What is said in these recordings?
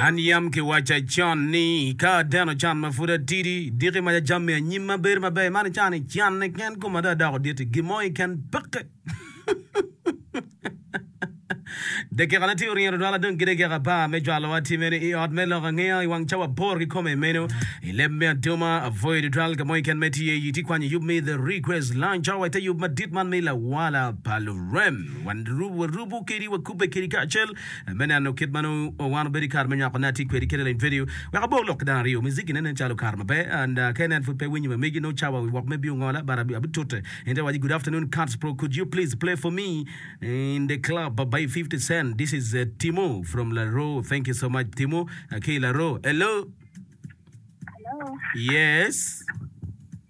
An yam kiwacca con ni, ka ateno can ma pud atidi, diki ma jajam me anyim ma bedo maber i man i can-ni, canne ken kome dong adoko dit-ti. Gin mo keken peke. Dakikane tye oryero dwala dong ki dakika apar me cwalowa timme ni i Ot me Lok Angeya i wang cawa aboro kikome. I meno, i leb me aduma, apwoyo tutwal ka mo keken ma itye iye, itye kwanyo yub me The Request Lounge cawa i te yub madit man me Lawala pa Lurem. Wan warubo kedi, wakubbe kedi kacel me neno kit ma nongo wan obedo i kare me nywako ne atye kwedi kede leng vedio wek abor lok ki dano aryo miziki ne nen calo kare maber and ka inen pud pe winyo ma megi nongo cawa wi wok me biyo ngola but abitute in te waci good afternoon Kants bro could you please play for me in the club by 50 cent this is uh, Timo from Laro thank you so much Timo uh, ki Laro hello Hello. yes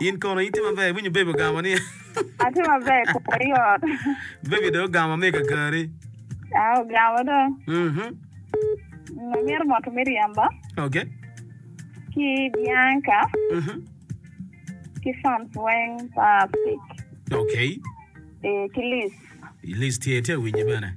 In kono itye maber? Iwinyo bebi ogamo ni? Atye maber kare i ot. Bebi dong ogamo me kakari? Ah, ogamo dong. Mhm. Amyero moto me ryemba. Okay. Ki Bianca. Mhm. Ki fans weng pa Fik. Okay. Eh, ki Liz. Liz tye, tye awinyi bene.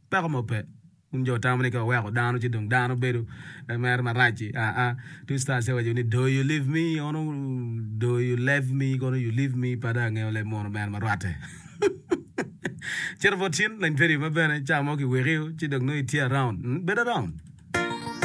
Peko mo pe. Wun jo wutamo ni ka waweko dano ci dong dano bedo mere marac-ci. Aa, Twista Asia owaco ni, Do you leave me? Kono do you lave me? Kono you leave me? Pa dong angeyo leb mono mere ma rwatte. Cito bot cin, lany peri ma bene, ca mo kiwekio ci dong nongo itye around. Bed around.